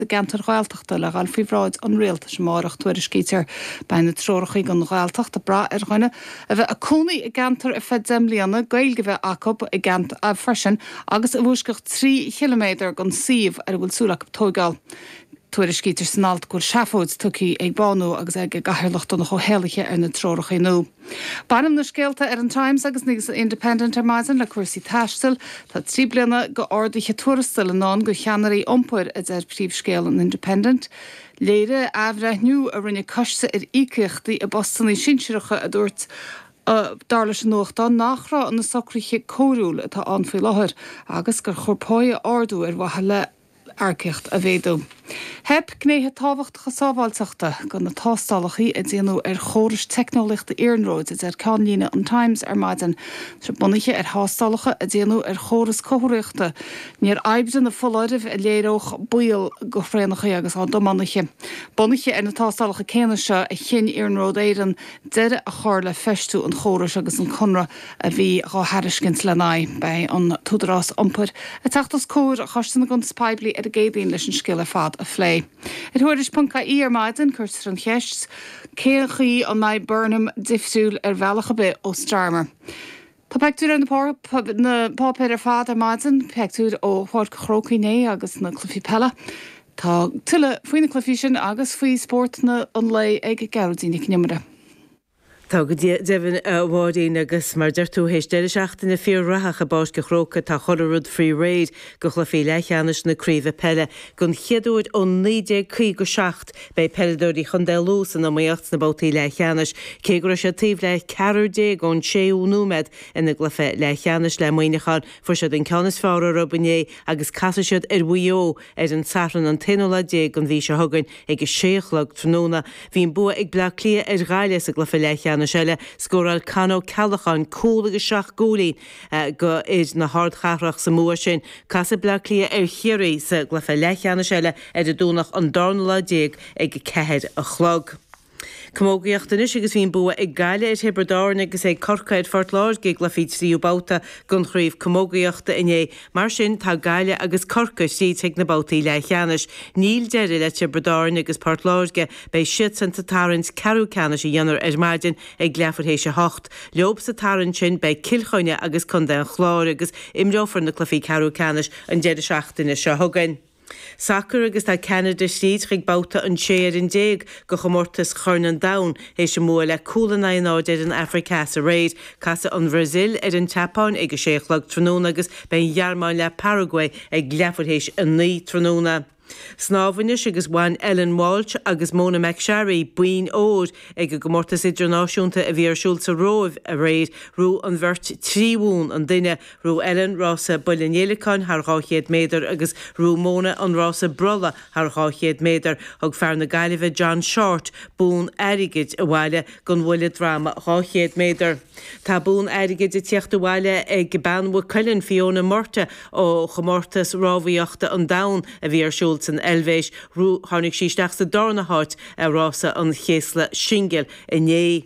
i gceantair Ghaeltachta le dhul faoi bhráid an Rialtais amárach, tuairiscítear. Beidh na treoracha don Ghaeltacht ag brath ar dhuine a bheith ag cónaí i gceantar ar feadh deich mbliana, Gaeilge a bheith acu i gceantar freisin agus i bhfoisceacht trí chiliméadar den suíomh ar a bhfuil súil acu tóigeáil. Tuairiscítear san alt go bhfuil seafóid tugtha ag Bánú agus ag a gcathaoirleach Donncha Ó hÉallaithe ar na treoracha nua. Baineann na scéalta ar an Times agus an Independent ar maidin le cúrsaí taistil. Tá trí bliana go arduithe tuarastail i ndán do cheannairí iompair, a deir príomhscéal an Independent. Léirigh athbhreithniú a rinne coiste ar íocaíochtaí i bpostanna sinsearacha a dúirt dar leis an nuachtán nach raibh na socruithe cóiriúil atá ann faoi láthair agus gur chóir páigh a ardú ar mhaithe le earcaíocht a mhéadú. Theip gnéithe tábhachtacha sábháilteachta go na tástálacha a déanadh ar chórais teicneolaíochta iarnróid, a deir ceannlíne an Times ar maidin. Tá sé bunaithe ar thástálacha a déanadh ar chóras comharthaíochta, níor oibrigh na foláirimh a léireodh baol go thraenacha agus dá dtiománaithe. Bunaithe ar na tástálacha céanna seo a chinn Iarnród Éireann deireadh a chur le feistiú an chórais agus an conradh a bhí dhá thairiscint lena aghaidh. Beidh an tÚdarás Iompair ag teacht os comhair Choiste na gCuntas Poiblí ar an gCéadaoin leis an scéal ar fad a phlé. Ar Thuairisc ponc ie ar maidin cuirtear an cheist cén chaoi an mbeidh Burnham difriúil ar bhealach ar bith ó Starmer. Tá peictiúir ar na páipéir ar fad ar maidin, peictiúir ó Pháirc an Chrócaigh inné agus na cluichí peile. Tá tuilleadh faoi na cluichí sin agus faoi spórt an lae ag Gearóidín Nic an Iomaire. Tá go deimhin, a Mháirín, agus mar a deir tú, théis deireadh seachtaine fíor-rathach i bPáirc a' Chrócaigh tá chuile rud faoi réir go chluichí leathcheannais na craoibhe peile. Don chéad uair ó 1957 beidh peileadóirí Chontae Lú san iomaíocht sna babhtaí leathcheannais. Cé go raibh siad taobh le ceathrar déag ón séú nóiméad ina gcluiche leathcheannais le Muineachán, fuair siad an ceann is fearr orthu inné agus casfaidh siad ar Mhaigh Eo Ar an Satharn an t-aonú lá déag den mhí seo chugainn ag a sé a chlog tráthnóna, bhí an bua ag Bleá Cliath ar Ghaillimh sa gcluiche leathcheannais eile. Scóráil Con Ó Ceallacháin cúl agus seacht gcúilín d'fhir na hardchathrach sa mbua sin. Casfaidh Bleá Cliath ar Chiarraí sa gcluiche leathcheannais eile ar an Domhnach an darna lá déag ag a ceathair a chlog. Camógaíocht anois agus bhí an bua ag Gaillimh ar Thiobraid Árann agus ag Corcaigh ar Phort Láirge i gcluichí tríú babhta den chraobh camógaíochta inné. Mar sin, tá Gaillimh agus Corcaigh thríd chuig na babhtaí leathcheannais. Níl deireadh le Tiobraid Árann agus Port Láirge. Beidh siadsan sa tarraingt ceathrú ceannais a dhéanfar ar maidin ag leathuair théis a hocht. Leob sa tarraingt sin beidh Cill Chainnigh agus contae an Chláir agus imreofar na cluichí ceathrú ceannais an deireadh seachtaine seo chugainn. Sacair agus tá Ceanada thríd chuig babhta an 16 fhoireann de chomórtas Chorn an Domhain théis a mbua le cúl in aghaidh náid ar an Afraic Theas aréir. Casfaidh an Bhrasaíl ar an tSeapáin ag a sé a chlog tráthnóna agus beidh an Ghearmáin le Paraguay ag leathuair théis a naoi tráthnóna. Snámh anois agus bhain Ellen Walshe agus Mona McSharry boinn óir ag an gcomórtas idirnáisiúnta a bhí ar siúl sa Róimh aréir. Ghnóthaigh an bheirt trí bhonn an duine Ghnóthaigh Ellen rása bhuille an fhéileacáin thar 200 méadar agus ghnóthaigh Mona an rása brolla thar 200 méadar. Thug fear na Gaillimhe John Shortt bonn airgid abhaile don bhuille droma 200 méadar. Tá bonn airgid ag tíocht abhaile ag bean Mhaigh Cuilinn, Fiona Murtagh, ó chomórtas rámhaíochta an domhain a bhí ar siúl san Eilvéis. Ghnóthaigh, tháinig sí isteach sa darna háit i rása an chéasla singil inné.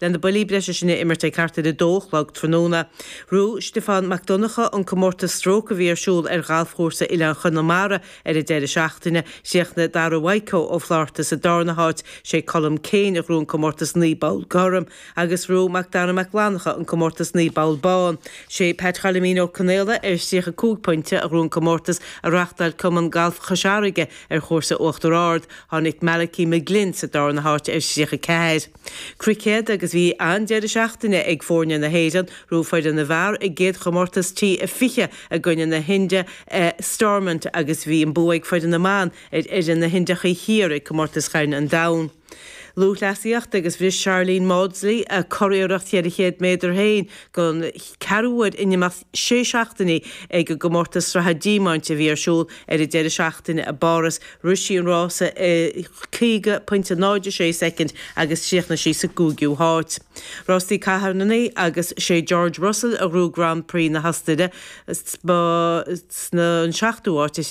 le na buillí breise sin a imirt ag thart ar 2 a chlog tráthnóna. Ghnóthaigh Stiofán Mac Donncha an comórtas stróc a bhí ar siúl ar ghalfchúrsa Oileáin Chonamara ar an deireadh seachtaine. Chríochnaigh Dara Mhaidhceo Ó Flatharta sa darna háit, sé Colm Keane a ghnóthaigh an comórtas 9 bpoll gorm agus ghnóthaigh Mac Dara Mac Fhlannacha an comórtas 9 bpoll bán. Sé Pat Choilimín Ó Conaola ar 35 pointe a ghnóthaigh an comórtas a reáchtáil Cumann Galf Chois Fharraige ar chúrsa Uachtar Ard. Tháinig Malachi McGlynn sa darna háit ar 34. Cruicéad agus bhí an-deireadh seachtaine ag foirne na hÉireann, ghnóthaigh foireann na bhfear a gcéad chomórtas T20 i gcoinne na hIndia i Stormont agus bhí an bua ag foireann na mban ar fhoireann na hIndiachaí Thiar ag Comórtas Chorn an Domhain. Lúthchleasaíocht agus bhris Sharlene Mawdsley a curiarracht cheithre chéad méadar féin don cheathrú uair in imeacht sé seachtainí ag an gcomórtas sraithe Diamant a bhí ar siúl ar an deireadh seachtaine i bPáras. Rith sí an rása i 50 pointe 0 6 soicind agus chríochnaigh sí sa gcúigiú háit. Rástaí carrannaí agus sé George Russell a ghnóthaigh Grand Prix na hOstaire, b'shin an seachtú háit.